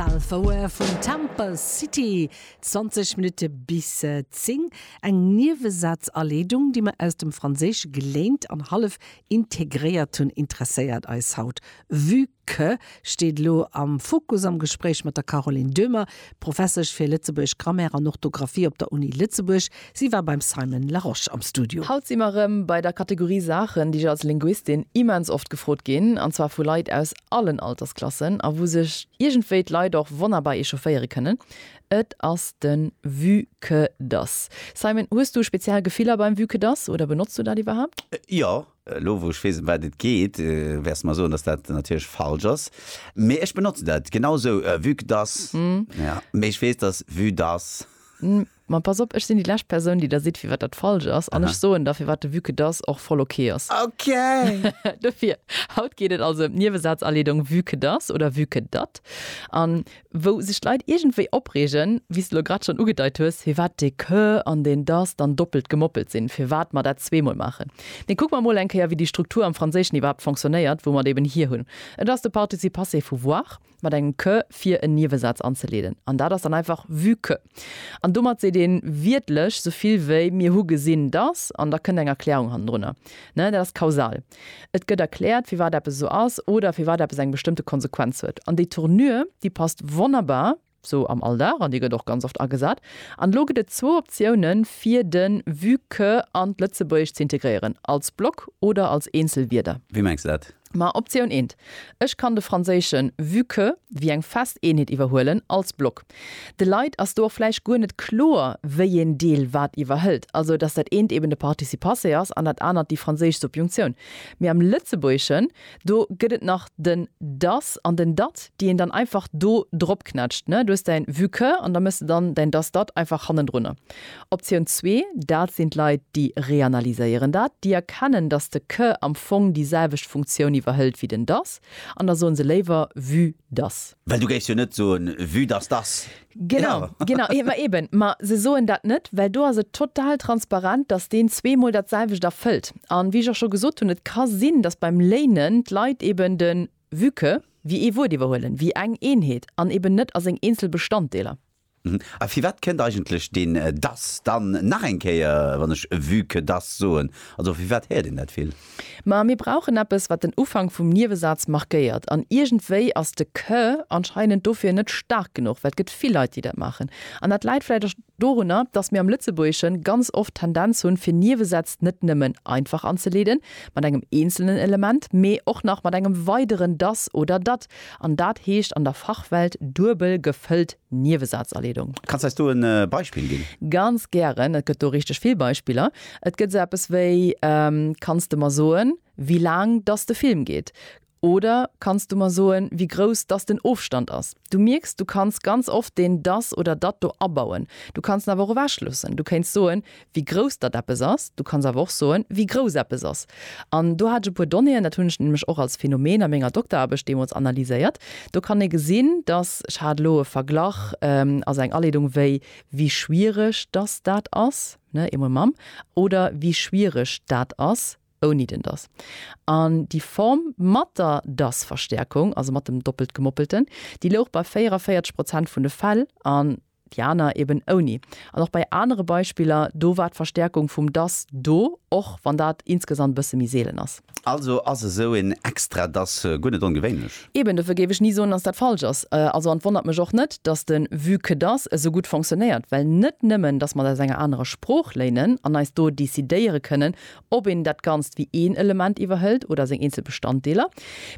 Belvoir vun Temple City, 20 Minutte bis 10, eng Niewesazaleedung, déi mer aus dem Franséische geléint an hallef integréiert hunn, interesséiert eis haut, vue que steet elo am Fokus am Gespréich mat der Caroline Döhmer, Professesch fir Lëtzebuergesch Grammaire an Orthografie op der Uni Lëtzebuerg. Si war beim Simon Larosche am Studio. Haut si mer rëm bei der Kategorie Saachen, déi ech als Linguistin immens oft gefrot ginn, an zwar vu Leit aus allen Altersklassen, a wou sech iergendwéi d'Leit och wonnerbar echaufféiere kënnen. Et ass de Vu que dass. Simon, hues du speziell Gefiller beim Vu que dass oder benotz du dat iwwerhaapt? Jo. Elo wou ech weess, ëm wat et geet, wäers de mer soen, dass dat natierlech falsch ass. Mee ech benotze dat genau esou, vu que dass. Mee ech weess, dass vu dass. Ma pass op, ech sinn déi lescht Persoun, déi der sidd, firwat dat falsch ass. An ech soen der, firwat de Vue-que das och voll ok ass. Ok! Dofir, haut geet et also ëm d'Niewesazaleedong Vue-que das oder Vue-que dat. An wou sech d'Leit iergendwéi opreegen, wéi s de elo grad schonn ugedeit hues, firwat dee que an deen das dann doppelt gemoppelt sinn, firwat mer dat zweemol maachen. Mee kucke mer emol eng Kéier, wéi déi Struktur am Franséischen iwwerhaapt fonctionnéiert, wou mer et eeben hier hunn. Et ass de Participe passé vu voir. mat engem que fir en Niewesaz anzeleeden, an dat ass dann einfach vue que. An domat seet ee wiertlech sou vill wéi mir hu gesinn datt, an da kënnt eng Erklärung hannendrunner. Dat ass kausal. Et gëtt erkläert, firwat eppes esou ass oder firwat eppes eng bestëmmte Konsequenz huet. An déi Tournure, déi passt wonnerbar sou am Alldag, an déi gëtt och ganz oft agesat. An elo gëtt et zwou Optiounen, fir de vue que an d'Lëtzebuergescht ze integréieren, als Block oder als eenzel Wierder. Wéi mengs de dat? Ma Optioun eent, ech kann de franséischen vue que wéi eng fest Eenheet iwwerhuelen als Block. De Leit ass do och vläicht guer net kloer, wéieen Deel wat iwwerhëlt, also datt dat eent eben de Participe passé ass an dat anert déi franséisch Subjunctioun. Mee am Lëtzebuergeschen, do gëtt et nach den das an den dat, déi een dann einfach do dropknätscht, ne, du hues däin vue que an da méchs de dann däin das dat einfach hannendrunner. Optioun zwee, dat sinn d'Leit, déi reanalyséieren dat, déi erkennen, datt de que am Fong déi selwecht Funktioun iwwerhëlt wéi den dass, an da soe se léiwer vue dass. Well du géifs jo net soen, vue dass dass. Genau, genau. Ma eben, ma se soen dat net, well do ass et total transparent, datt deen zweemol dat selwecht erfëllt. A wéi ech och scho gesot hunn, et ka sinn, datt beim léinen d'Leit eben de vue que wéi ee Wuert iwwerhuelen, wéi eng Eenheet an eben net a seng eenzel Bestanddeeler. A firwat kënnt eigentlech deen dass dann nach eng Kéier, wann ech vu que dass soen? Also firwat héiert een dat vill? Ma mir brauchen eppes, wat den Ufank vum Niewesaz markéiert. An iergendwéi ass de que anscheinend dofir net staark genuch, well et gëtt vill Leit, déi dat maachen. An dat läit vläicht och dorunner, dass mir am Lëtzebuergesche ganz oft d'Tendenz hunn, fir Niewesätz net nëmmen einfach anzeleeden, mat engem eenzelnen Element, mee och nach mat engem weideren dass oder dat. An dat heescht an der Fachwelt duebel gefëllt Niewesazaleedung. Kanns eis do e Beispill ginn? Ganz gären, et gëtt do richteg vill Beispiller. Et gëtt esou eppes wéi, Kanns de mer soen, wéi laang dass de Film geet? oder Kanns du mer soen, wéi grouss dass den Ofstand ass? Du mierks, du kanns ganz oft deen dass oder dat do abauen. Du kanns en awer och ewechloossen. Du kéints soen, wéi grouss datt eppes ass, du kanns awer och soen, wéi grouss eppes ass. An do hat ech e puer Donnéeën, dat hunn ech nämlech och als Phänomen a menger Dokteraarbecht deemools analyséiert. Do kann ee gesinn, datt, ech hat elo e Verglach, also eng Aleedung, wéi wie schwiereg datt dat ass, ne, eemol mam, oder wie schwiereg dat ass ouni den datt. An déi Form mat der datt-Verstäerkung, also mat dem Doppeltgemoppelten, déi louch bei 44 Prozent vun de Fäll, an déi aner eben ouni. An och bei anere Beispiller, do war d'Verstärkung vum dass do, och wann dat insgesamt e bësse méi seelen ass. Also ass esou een extra dass guer net ongewéinlech? Eben, dofir géif ech ni soen, dass dat falsch ass. Also, an et wonnert mech och net, dass de vu que dass esou gutt fonctionnéiert, well net nëmmen, dass mer et aus enger anerer Sprooch léinen an eis do decidéiere kënnen, ob een dat Ganzt wéi een Element iwwerhëlt oder seng eenzel Bestanddeeler.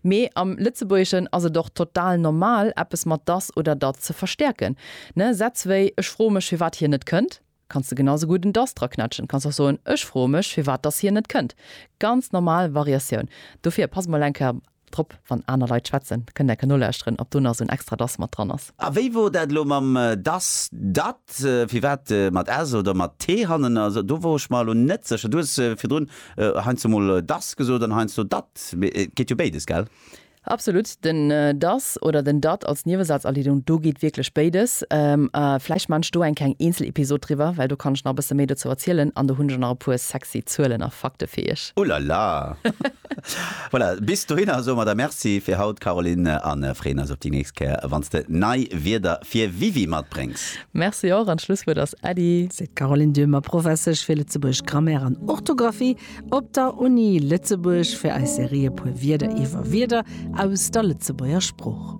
Mee am Lëtzebuergeschen ass et och total normal, eppes mat dass oder dat ze verstäerken. Ne, Sätz wéi Ech froe mech, firwat hien net kënnt, kanns de genau esou gutt en dass draquetschen. Kanns och soen, Ech froe mech, firwat dass hien net kënnt. Ganz normal Variatioun. Dofir pass mol eng Kéier Drop, wann aner Leit schwätzen, kënnt enke nolauschteren, ob do nach esou en extra das mat dran ass. A wéi wor dat elo mam das, dat, firwat mat s oder mat t hannen ass? Do wor ech mer elo net sécher. Du hues virdrun heiansdo mol das gesot an heiansdo dat, mee et geet jo béides, gell? Absolut, den das oder den dat als Niewesazaliedung, do geet wierklech béides. A vläicht maan ech do eng kleng Eenzelepisod driwwer, well do kann ech nach e bësse méi dozou erzielen an do hunn ech och nach e puer sexy Zuelen a Fakte fir iech. Ulala! Voilà, bis dohinner soe mer der Merci fir haut, Caroline, a freeën eis op déi nächst Kéier, wann s de nei Wierder fir Wiwi matbréngs. Merci och, an d'Schlusswuert ass Äddi. Seet d'Caroline Döhmer, Professesch fir Lëtzebuergesch Grammaire an Orthografie op der Uni Lëtzebuerg, fir eis Serie E puer Wierder iwwer Wierder aus der Lëtzebuerger Sprooch.